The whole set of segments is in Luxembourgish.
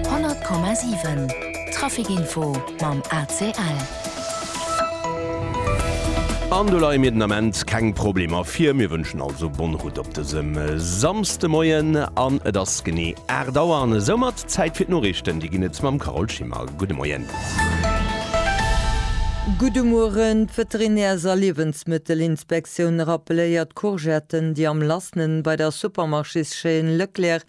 100,7 Trafic info mam ACL. An do leie mir den Ament keng Problemer vir. Mir wënschen also bonne route op dësem Samsdemoien. An et ass genee 8 Auer an esou mat Zäit fir d'Noriichten. Déi ginn et mam Carole Schimmer. Gudde Moien. Gudde Mueren. D'Veterinärs a Liewensmëttelinspektioun rappeléiert, Courgetten, déi am lassenen bei der Supermarchéschaîne Leclerc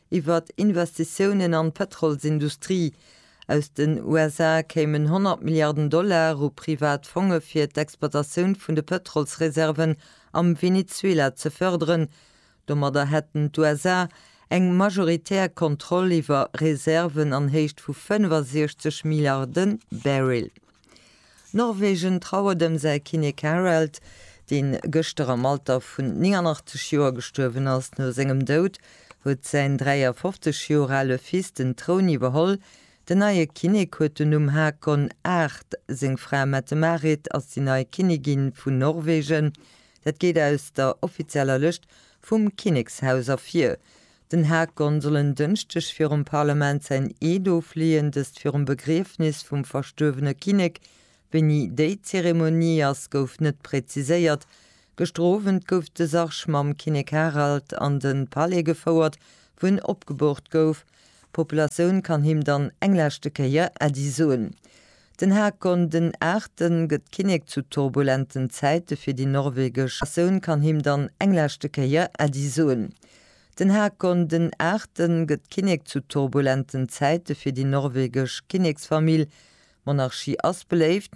Iwwer Investitiounen an d'Pëtrolsindustrie aus den USA kéimen 100 Milliarden Dollar u privat Fonge fir d'Exploitatioun vun de Pëtrolsreserven am Venezuela ze fërderen. Domadder hätten d'USA eng majoritär Kontroll iwwer Reserven an Héicht vu 65 Milliarde Barrel. Norwegen trauert ëm säi Kinnek Harald, dee gëschter am Alter vun 89 Joer gestuerwen ass. No sengem Doud huet säin 53 Joer ale Fils den Troun iwwerholl. Den neie Kinnek huet den Numm Haakon VIII. Seng Fra Mette-Marit ass déi nei Kinnigin vun Norwegen. Dat geet aus der offizieller Lëscht vum Kinnekshaus ervir. Den Haag Gon soll en Dënschdeg virum Parlament säin Eed ofleeën, dëst virum Begriefnis vum verstuerwene Kinnek. Wéini déi Zeremonie ass, gouf net präziséiert. Gëschter Owend gouf de Sarg mam Kinnek Harald an de Palais gefouert, wou en opgeboort gouf. D'Populatioun kann him dann eng leschte Kéier Äddi soen. Den Haag Gon den Aachten gëtt Kinnek zu turbulenten Zäite fir déi norwegesch Natioun kann him dann eng leschte Kéier Äddi soen. Den Hakon den Aachten gëtt Kinnek zu turbulenten Zäite fir déi norwegesch Kinneksfamill. D'Monarchie ass beléift.